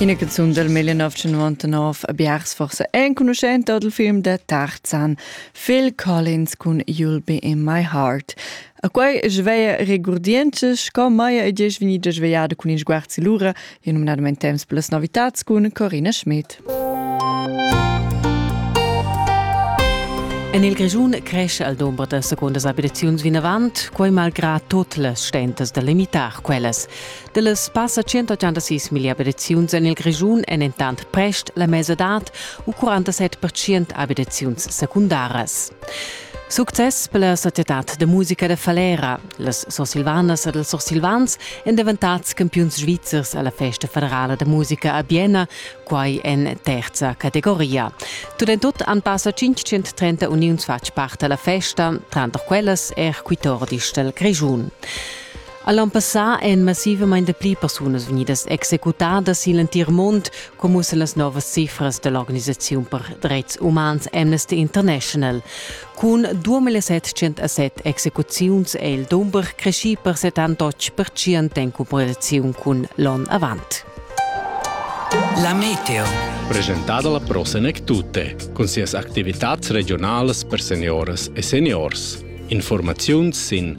Ina canzun del 1999 a Biars forse enconuschenta dal film da Tarzan, Phil Collins cun You'll Be In My Heart. A quei sveia regurdiences sco Maia e Ges venida svegliada cun in sguarzi lura e nominadament temps per las novitats cun Corina Schmidt. En il Grischun cresce al domber da secondas abitaziuns vinavant, quai malgrà tot las stentas da limitar quellas. Dallas passa 186 mila abitaziuns en il Grischun èn entant prest la mesadad u 47 abitaziuns secundaras. Success per la societad da musica da Falera. Las sursilvanas ed ils sursilvans èn daventads campiuns svizzers alla festa federala da musica a Bienna, quai en terza categoria. Tut en tut han passa 530 uniuns fatg part alla festa, tranter quellas er quitordis dal Grischun. All'ann passà èn massivamain dapli persunas vegnidas executadas sin l'entir mund, come ussa las novas cifras da l'organisaziun per dretgs umans Amnesty International. Cun 2707 execuziuns è il dumber creschì per 78% en comparaziun cun l'onn avant. La Meteo. Presentata la Pro Senec Tutte, con sias activitats regionalas per seniores e seniors. Informaziuns sin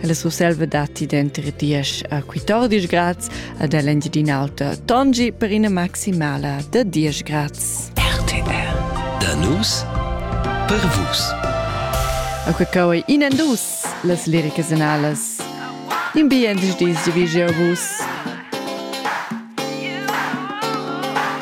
Ella Surselva datti denter diesch a 14 grads ad Engiadin'Alta Tongi per ina maximala da 10 grads. RTL Da nus per vus. A que cau in dus las liricas analas. In bien dis divigi vus.